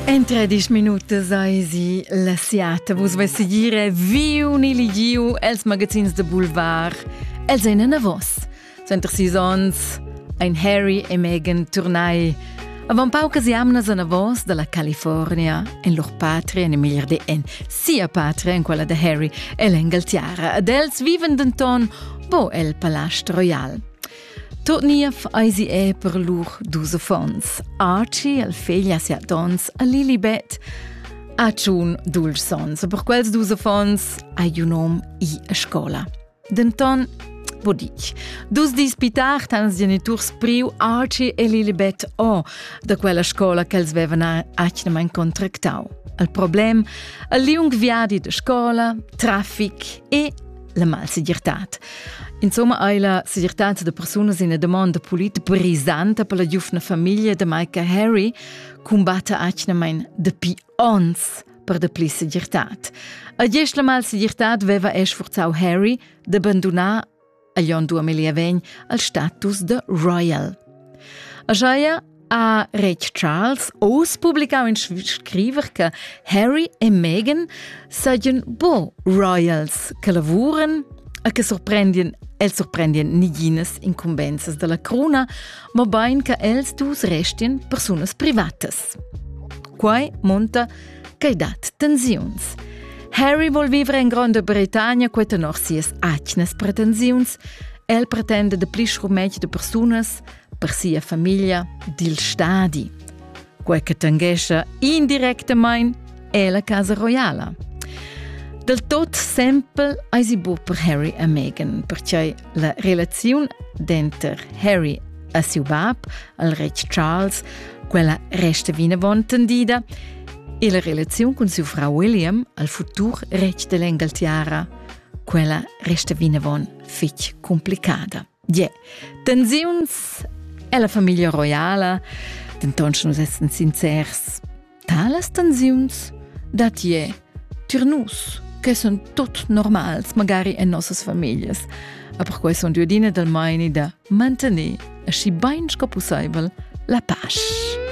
In tredisch minutas eisi la siata. Vus vessi dire viu ni ligiu els magazins de Boulevard. Els ein anavos. Center sis ons, ein Harry e Meghan Turnai. Avant paucas jamnas anavos dalla California, en lur patria, en meglier de en sia patria, en quella de Harry, el en Galtiara. Ad els viven denton bo el Palast Royal. Tot niev eisi è per lur dus affons, Archie, el fegl a sia dons, a Lilibet. Ha tschun dulce sons, per quels dus affons hai un hom i a scola. Denton, vo dich. Dus dis pi tard han els geniturs priu Archie e Lilibet o da quella scola che els vevan atgnamain contractau. Il problem, il liung viadi de scola, traffic e la malsegirtad. Insomma hai la segirtad da persunas ina domanda polit brisanta per la giufna famiglia da Micah Harry combatta atgnamain dapi ons per dapli segirtad. A dies la malsegirtad veva e sforzau Harry da bandonar a Jon Duamelia vegn al status de royal. A Jaia Ha retg Charles oz publicau in scriver che Harry e Meghan seigien bo royals che lavuren e che sorprendien els sorprendien niginas incumbensas dalla cruna, mobein che els dus restien persunas privatas. Quai monta che dat tensiuns. Harry vol vivre in Gronda Britannia quei tenor sias atgnas pretensiuns. El pretende de pli schurmetg de persunas, per sia famiglia dil stadi, quei che tanghescha indirectamain è la casa royala. Del tot sempel eisi bu per Harry e Meghan, perciò la relaziun denter Harry e siu bab, il retg Charles, quella resta vinavon tendida e la relaziun cun siu frau William, al futur retg dell'Engaltiara, quella resta vinavon fitg complicada. Yeah. Tensiuns è la famiglia roiala, denton sche nus essen sincers, talas tensiuns dat je tir nus, che sono tot normals, magari en nossas familias. A per quei son due dine dal maini da mantenere aschi bein sco possibel la pace.